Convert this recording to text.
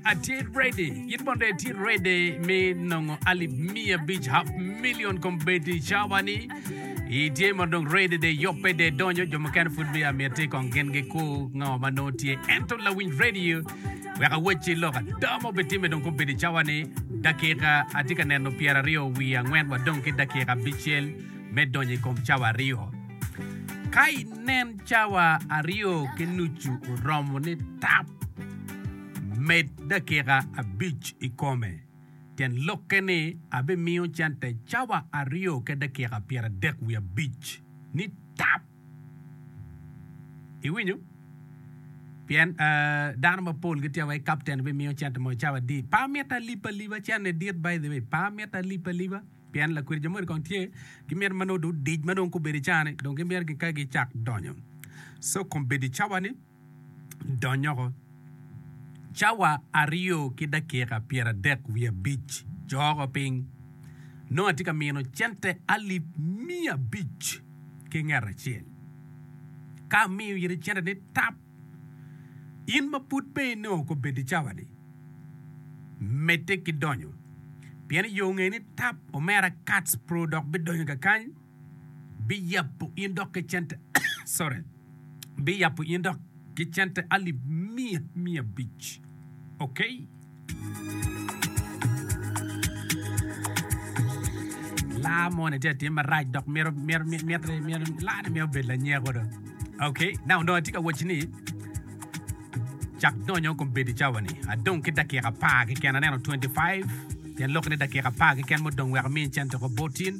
Atye ready. In bene dong itye ready me nongo alip miya abic, half million, kombeddi cawa ni itye ma dong ready de yobbe de donyo. Jo mukene pud biya mitte kong gin gikur ngo ma nongo tye. Ento lawinj radio wek awacci lok ada ma obitimme dong kombeddi cawa ni dakika atye ka neno pyeraryo wiye angwen wa dong ki dakika abicel me donyo i kom cawa aryo. Ka inen cawa aryo ki nucu oromo ni tap. Med dakika abic i kome. Tyen lokke ni abimiyo cente cawa aryo ki dakika pyeradek wiye abic ni tap. Iwinyo? Pien dano mapol gitye awai kapten bimiyo cente mo cawa adi. Pe amito alip aliba, cente dit by the way. Pe amito alip aliba. Pien lakwiri jo moni kong tye gimito manongo dong odic manongo kubedo i cani dong gimito gika gicak donyo. So kong bedi cawa ni. donyoko. Cawa aryo ki dakika pyeradek wiye abic co oko piny, nongo atye ka mino cente alip miya abic ki nget acel. Ka amiyo iri cente ni tap, in ma pud pe inongo kobeddi cawa-ni, medde ki donyo, pien i yo ngeyo ni tap omera Katz Pro dok bidonyo kakany. biyabo in dok ki cente sorry biyabo in dok ki cente alip miya miya abic okay laa moni tye atim marac dok mito mito mito mito mito laa ne mito bedo lanyeko do okay now dong atye ka waci ni cak donyo kombeddi cawa ni adong ki dakika apar keken aneno 25 pien lok ni dakika apar keken mudong wek amini cente ko botin